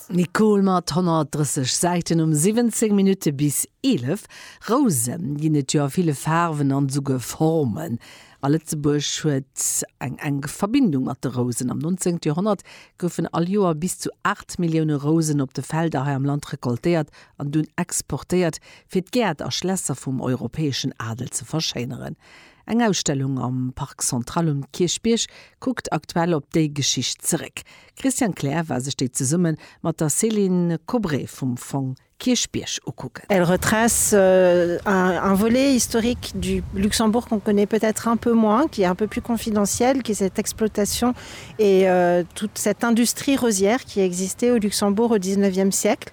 Nicole mat 130 Säiten um 17 Minutte bis 11. Rouse ginn et jo a ville Faarwen an esouguer Formen. A Lëtzebuerg huet eng enk Verbindung mat de Rousen. Am 19. Joerhonnert goufen all Joer bis zu 8 Millioune Rousen op de Felder hei am Land recoltéiert an dunn exportéiert, fir d'Gäert a Schlässer vum europäeschen Adel ze verschéineren. Eng Ausstellung am Parc Central um Kierchbierg kuckt aktuell op déi Geschicht zeréck. Christian Klähr war sech déi zesumme mat der Céline Kobré vum Fong Kierchbierg ukucken. Elle retrace un volet historique du Luxembourg qu'on connaît peut-être un peu moins, qui est un peu plus confidentiel, qui est cette exploitation et toute cette industrie rosière qui a existé au Luxembourg au dix-neuvième siècle.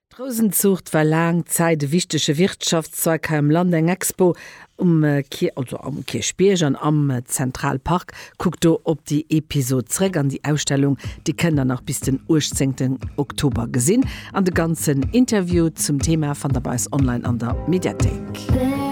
D'Rousenzuucht war laang Zäit e wichtege Wirtschaftszweig hei am Land, eng Expo um Kierchbierg an am Central Park kuckt do op déi Episod zréck an déi Ausstellung déi kënnt der nach bis den 18 Oktober gesinn an de ganzen Interview zum Thema fannt der bei eis online an der Mediathéik.